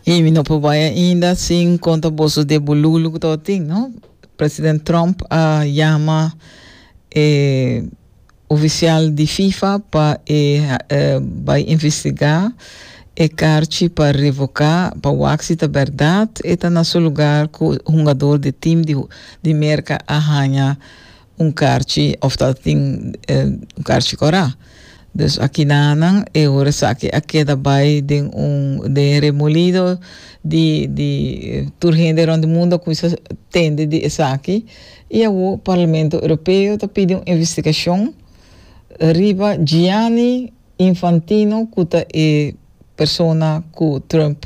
Y mi no por bai ainda sin conta boso de bululu que todo tin, no? President Trump a llama eh, oficial di FIFA pa e eh, bai investiga e carchi pa revoca, pa wak si ta berdad e ta na su lugar cu hungador di team di, di Merca a haña un karchi of ta tin un karchi kora. Dus akinanan e ora esaki a keda bai den un den e remolido di di tur hende rond di mundo a kuminsa tende di esaki i awor Parlamento Europeo ta pidi un investigashon riba Gianni Infantino ku ta e persona ku Trump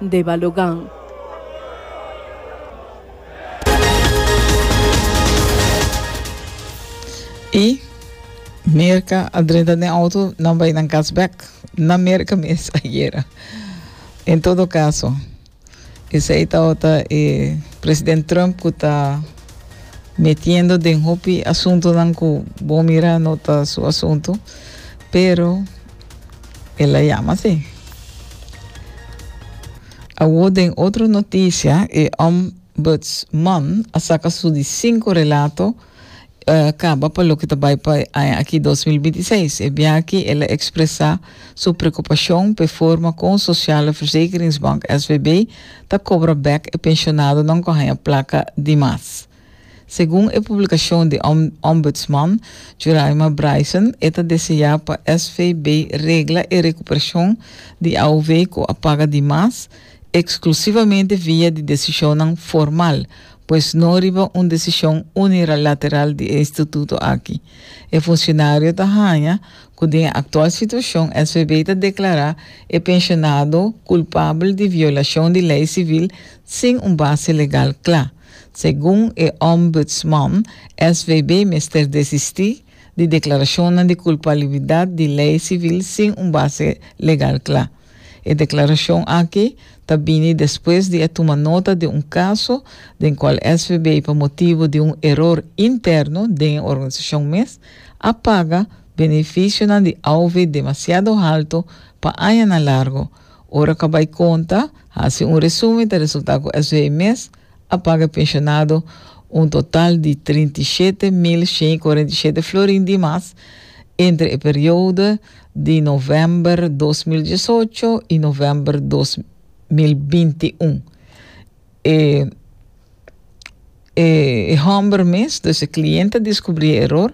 de Balogan. Y Mirka a drenta den auto, nan bay nan cas bek. Na Mirka mes ayera. En todo caso, esey tabata e president Trump cu ta metiendo den hopi asuntonan cu bo mira no ta su asunto, pero El a yama así. Awor den otro noticia, e ombudsman a saca su di cinco relato uh, caba pa loke ta bay pa e aña aki 2026. E bia aki el a expresa su preocupacion p'e forma con Sociale Verzekeringsbank, SVB, ta cobra bek e pensionadonan cu a haña placa di mas. Segun e publikashon di Ombudsman Juraima Bryson, e ta deseá pa SVB regla e rekuperashon di AOV ku a paga di mas, eksklusivamente via di desishonnan formal, pues no riba un desishon uniralateral di e instituto aki. E funsionario ta haña ku den e aktual situashon SVB ta deklará e penshonado kulpabel di violashon di lei sivil sin un base legal kla. Segun e Ombudsman, SVB mester desisti di deklarashonnan di kulpalibidat di lei sivil sin un base legal kla. E deklarashon aki ta bini despues di e tuma nota di un kaso den kual SVB pa motibu di un eror interno den e organisashon mes a paga benefisionan di auve demasiado halto pa añanan largu, Ora cu a bay conta, haci un resumen, ta resulta cu SW mes a paga e pensionado un total di trinta i shete mil shen i cuarenta i shete florin di mas entre e periodo di november dos mil diesocho i november dos mil binti un. E e e hòmber mes, dus e klient a diskubrí e eror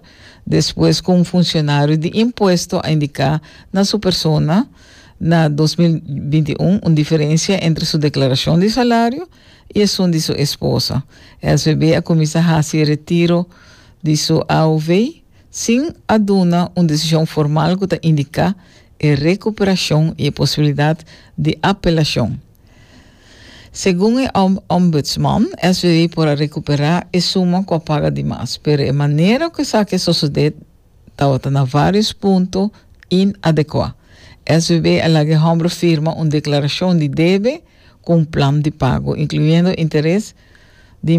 despues ku un funsionario di impuesto a indiká na su persona na dos mil binti i un un diferensia entre su deklarashon di salario i esun di su esposa. SBB a kuminsá hasi retiro di su AOV sin a duna un desishon formal ku ta indiká e rekuperashon i e posibilidat di apelashon. Segun e Ombudsman, SVW por a recuperá e suma cu a paga di mas, pero e manera cu esaki a sosodé tabata na varios punto inadecuá. SVW a laga e hombro firma un declaracion di debe cu un plan di pago, incluyendo interes di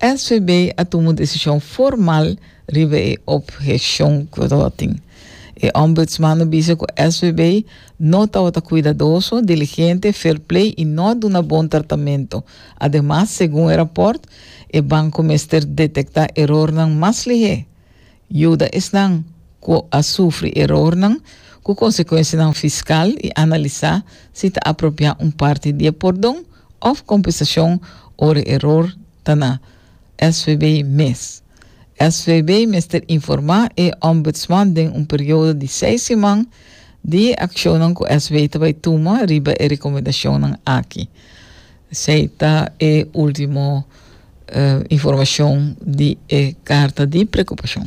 SVB a tuma un desishon formal riba e opheshon ku lo a tin. E Ombudsman a bisa ku SVB no tabata kuidadoso, diligente, fairplay i no a duna bon tratamentu. Ademas, segun e rapòrt, e banko mester detektá erornan mas lihé Yuda esnan ku a sufri erornan ku konsekuensianan fiskal i analisá si ta apropiá un parti di e pordon òf kompensashon ora e eror ta na SVB mes. SVB mester informá e Ombudsman den un periodo di seis siman di e akshonnan ku SVB ta bai tuma riba e rekomendashonnan aki. Esei ta e último. informashon di e karta di prekupashon.